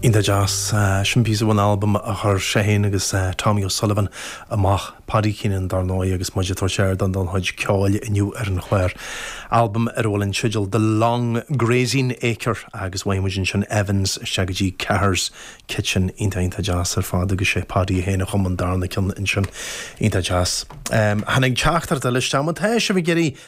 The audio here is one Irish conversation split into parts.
Iontach deas. Sin píosa ón albam a chuir sé féin agus Tommy O'Sullivan amach, Paddy Keenan dar ndóigh, agus muid ag tabhairt ardáin don chuid ceoil inniu ar an chlár. Albam ar a bhfuil an teideal The Long Grazing Acre agus chuaigh muid as Sean Éamonn's isteach go dtí Cahir's Kitchen. Iontach, iontach deas ar fad agus sé Paddy é féin a chum an darna ceann ansin. Iontach deas. Tháinig teachtaireacht eile isteach, má tá sibh ag iarraidh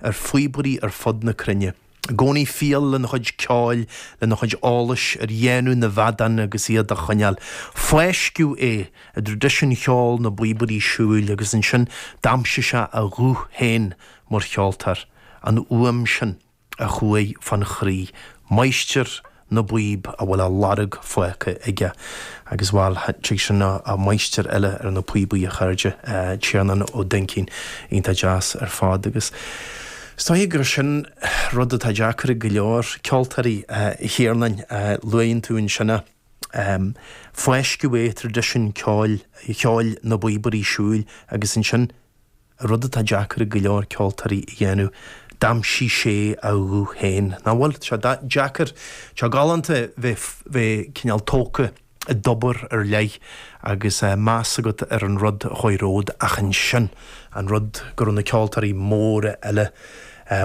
ar phíobairí ar fud na cruinne, i gcónaí fial lena chuid ceoil, lena chuid eolais ar dhéanamh na bhfeadán agus iad a choinneáil. Fáisceadh é i dtraidisiún cheol na bpíobairí siúil agus ansin d'aimsigh sé a ghuth féin mar cheoltóir, an fhuaim sin a chuaigh fán chroí, máistir na bpíob a bhfuil a lorg fágtha aige agus, bhail, tháinig sin ó mháistir eile ar na píobaí, a chairde, Tiarnán Ó Duinnchinn, iontach deas ar fad agus is dóigh gur sin rud atá deacair ag go leor ceoltóirí, a Thiarnáin, luaigh tú ansin é, fáisceadh é i dtraidisiún ceoil na bpíobairí siúil agus ansin, rud atá deacair ag go leor ceoltóirí a dhéanamh, d'aimsigh sé a ghuth féin. Nach bhfuil sé deacair, tá galánta bheith cineál tógtha i dtobar ar leith agus meas agat ar an rud a chuaigh romhat ach ansin an rud go raibh na ceoltóirí móra eile,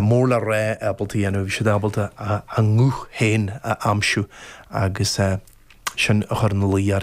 mór le rá ábalta a dhéanamh, bhí siad ábalta a nguth féin a aimsiú agus sin a chuir ar leith iad.